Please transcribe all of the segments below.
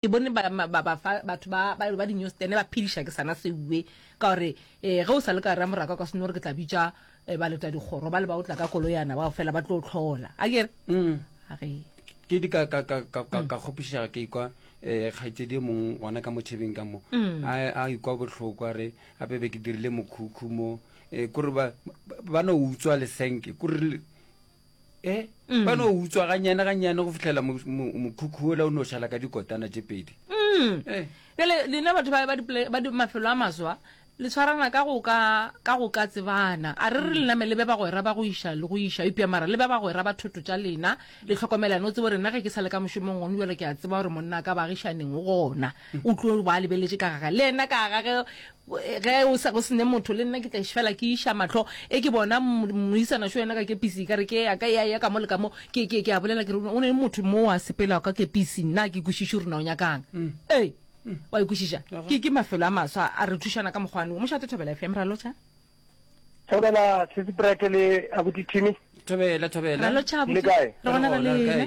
ke bone ba ba ba fa batho ba ba ba dinyo stene ba phidisha ke sana seuwe ka gore eh ge o sa le ka ra moraka ka seno re ke tla bitsa eh, ba leta dikgoro ba le ba o tla ka koloyana ba fela ba tlo tlhola a ke re mm. a re ke di ka ka ka ka ka ka khopisha ke ikwa eh khaitsedi mong wana ka mothebeng ka mo mm. a a ikwa bohloko a re a be ke dirile mokhukhu mo eh kore ba ba no utswa le senke kore e eh, mm. ba no utswa ganyane ganyane go fitlhela mokhukhu ola o no šala ka dikotana tše pedi mm. eh. bjale lena batho ba mafelo a maswa le tshwarana ka go ka tsebana a re re mm. lename le be bagwera ba go iša le go iša epja mara le be bagwera ba thoto tša lena le tlhokomelane o tsebo rena ge ke sa le ka mošomong gone jalo ke a tseba gore monna ka bagišaneng gona o tlo ba lebeletše ka gaga le ena ka gage Ge o sa go se ne motho, le nna ke tla fela ke iša mahlo, e ke bona moisana šo yena ka kepisi, ka re ke ya ka, ya ya ka mo le ka mo, ke, ke, ke a bolela ke re, o ne le motho mo a sepelago ka kepisi, nna ke kwešiše rona o nyakang. Ee, wa ikwešiša, ke, ke mafelo a maswa a re thušana ka mokgwane wo. Mošate Thobela FM, ra lotšha. Thobela, Sesi Brett le Abuti Timmy. Thobela, Thobela. Ra lotšha, Abuti. Le kae? Re gona re lena.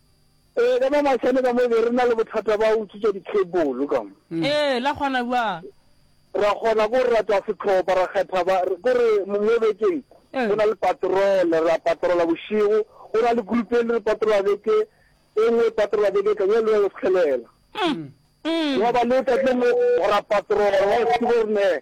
Ee, ka mo mašane ka mo be re na le bothata ba go utswetša di-cable ka mo. Ee, la kgona bjang? Ra kgona ke gore ra tšwa sehlopha, ra kgetha ba, ke gore mo mo bekeng go na le patrole, ra patrola bošego, go na le group e le re patrola beke e nngwe, e patrola beke e tlang, e le ya go setlhelela. Gwa ba le letsatsi le lengwe ra patrola, gwa se ke gore ne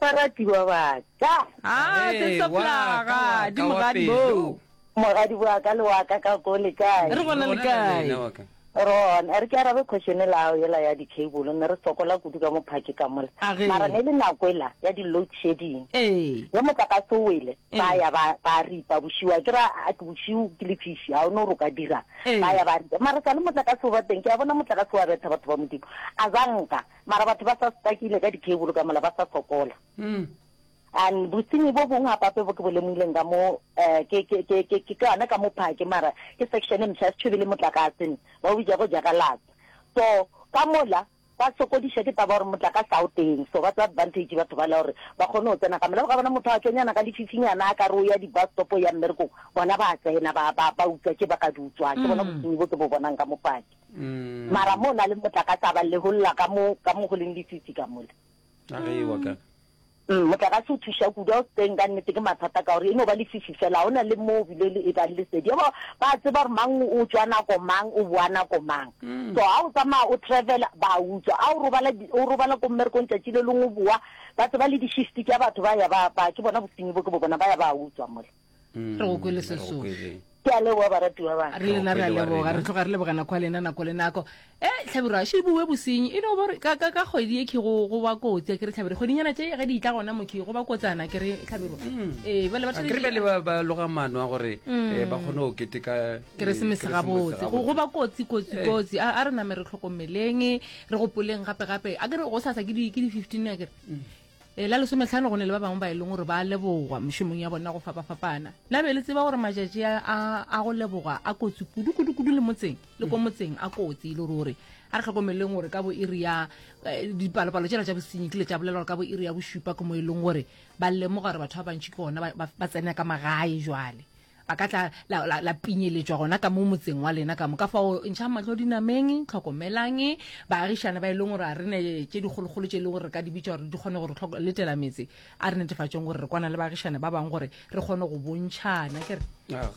Baratiwa ba ka. A se soplaga di mogadi bo. Mogadi wa ka le wa ka ka ko le kae? Re bona le kae? ron a re ke arabe question la ao ela ya di-cable ne re sokola kudu ka mophake ka mola mara ne le nako ela ya di-load shedding ee. ge motlakase o wele ee. ba ya ba ripa bosiu a ke ra bosiu ke lefiši ga o ne o roka dirang ee. ba ya ba ripa mara sa le motlakase o ba teng ke a bona motlakase wa betha batho ba modimo a zanka Mara batho ba sa stakile ka dikebolo ka mola ba sa sokola. And bosenyi bo bongwe gapape bo ke bo lemogileng ka mo um ke ke ke ke ke ka yona ka mo phake mara ke section e mosha setšhwebe le motlakase ba o bitša go jagalatsa. So ka mola ba sokodiša ke taba gore motlakase ga o teng so ba tsa advantage batho ba la gore ba kgone go tsena ka mola. O ka bona motho a tšonyana ka lefifinyana a ka re o ya di-bus stop o ya mmerekong bona ba tsena ba ba ba utswa tše ba ka di utswang. Ke bona bosenyi bo ke bo bonang ka mo phake. mara mo na le motlakase a ba leholla ka mo ka mo go leng lefitsi ka mola a re wa ka mm, motlakase o thuša kudu a o teng ka nnete ke mathata ka gore e no ba lefifi fela go na le mo bile le e bang le sedi ba ba tseba gore mang o tswa nako mang o boa nako mang mm. so ga o tsamaya o travel ba utswa a o robala o robala ko mmerekong tsatsi le lengwe boa ba tseba le di-shift tša batho ba ya ba ke bona bosenyi bo ke bo bona ba ya ba utswa mole re go kwele sesofe ke a leboga baratiwa ba re lena re a leboga re tloga re leboga nako ya lena nako le nako e tlhabiro a še bue bosenyi e no bore ka ka ka kgwedi e ke go go ba kotsi ke re tlhabiro kgwedinyana tše ge di tla gona mo ke go ba kotsana ke re tlhabiro mm. e ba le ba tsere le ba ba loga mano a gore mm. e ba gone o kete ka e, keresemese ga botse go go ba kotsi kotsi eh. kotsi a re name re tlhokomeleng re gopoleng gape gape a ke re go sa sa ke di ke di 15 a ke re mm. E la lesometlhano go ne le ba bangwe ba e leng gore ba lebogwa mošomong ya bona go fapafapana na be le tseba gore matšatši a go lebogwa a kotsi kudu-kudu-kudu le motseng le ko motseng a kotsi e le ruri a re tlhokomeleng gore ka bo iri ya eh, dipalopalo tsela tša bosenyi kile tša bolela gore ka bo iri ya bošupa ke mo e leng gore ba lemoga gore batho ba bantšhi ke gona ba tsena ka magae jwale a ka tla la, la, la pinyeletšwa gona ka mo motseng wa lena ka mo ka fao ntšhang mahlo dinameng tlhokomelang baagišane ba e leng gore a re ne tše dikgolokgolo tše e leng gore re ka di bitša gore di kgone gore tlhoko letela metse a re netefatšeng gore re kwana le baagišane ba bangwe gore re kgone go bontšhana ke re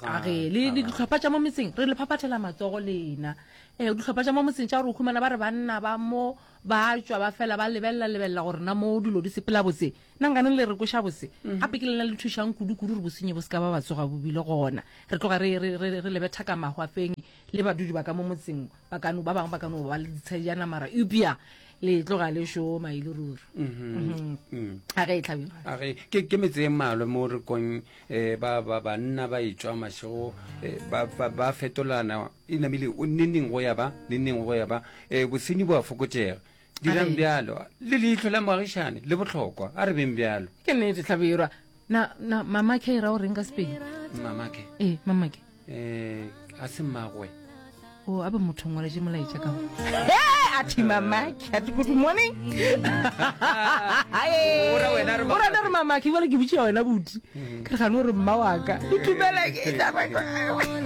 age le le ditlhopha tša mo metseng re le phaphathela matsogo lena ee ditlhopha tša mo motseng tša gore o humana ba re banna ba mo ba tšwa ba fela ba lebelela lebelela gore na mo dilo di sepela botse Na nkane le re kweša bose? Gape ke lena le thušang kudu-kudu gore bosenyi bo se ka ba ba tsoga bo bile gona. Re tloga re, re, re, re lebe thaka mahwafeng, le badudi ba ka mo motseng, ba ka no, ba bangwe ba ka no ba le ditshedijana, mara eupša le tloga le šoma e le ruri. Mhm. A ge e tlhabe. A ge, ke, ke metse e mmalwa mo re kong eh, ba, ba, banna ba etšwa mašego, eh, ba, ba, ba fetolana, e namile o neneng go ya ba, neneng go ya ba, eh, bosenyi bo a fokotšega. Dirang bjalo, le leihlo la moagišane le bohlokwa, a re beng bjalo. Ke nnete, Hlabirwa. Na, na, Mamake e ra o reng ka Sepedi? Mamake? Ee, Mamake. Eh, a se mmagwe. O a ba motho ngwaletše molaetša ka go. A thi Mamake, a thi good morning. O ra wena re O rana re Mamake, jwale ke botšiša wena boti. Ke re gane o re mma wa ka. Ke tumela ke taba.